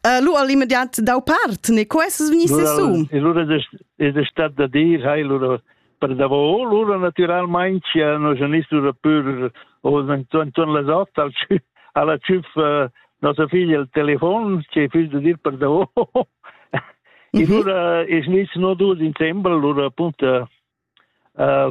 Uh, lu all'immediat dau part, ne quests vegni sesum. Lura es stat da dir, hai lura per davò, lura naturalmein sia no genist lura pur o intorn las otto alla tschüff nostra figlia il telefon, che fisch da dir per davò. E mhm. lura es nis no dus insembel, lura appunto uh,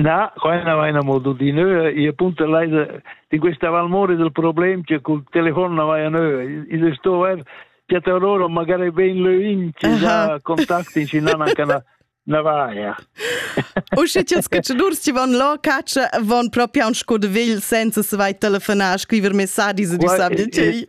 Na, quella vaina mo tutti neu. Io punto leide di questa valmore del problema che col telefon na vaia neu. Io sto ver piatta loro magari ben leuin che già contacti ci nan anche na na vaia. O sche ti scacciadurs ti van là caccia van proprio un sco de vegl senza se vai telefonar, scriver messaggi se ti sabi de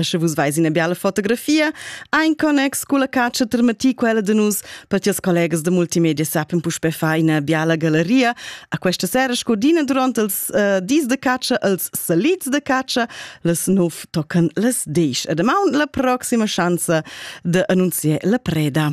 Sche vus veis ina biala fotografia, ha in connex culla catscha termati quella de nus, per tias collegas de multimedia sappen puspe fa ina biala galeria. A questa sera scodina durante els uh, dis de catscha, els salits de catscha, les nov tocan les dies. E demà la proxima schanza de annunzier la preda.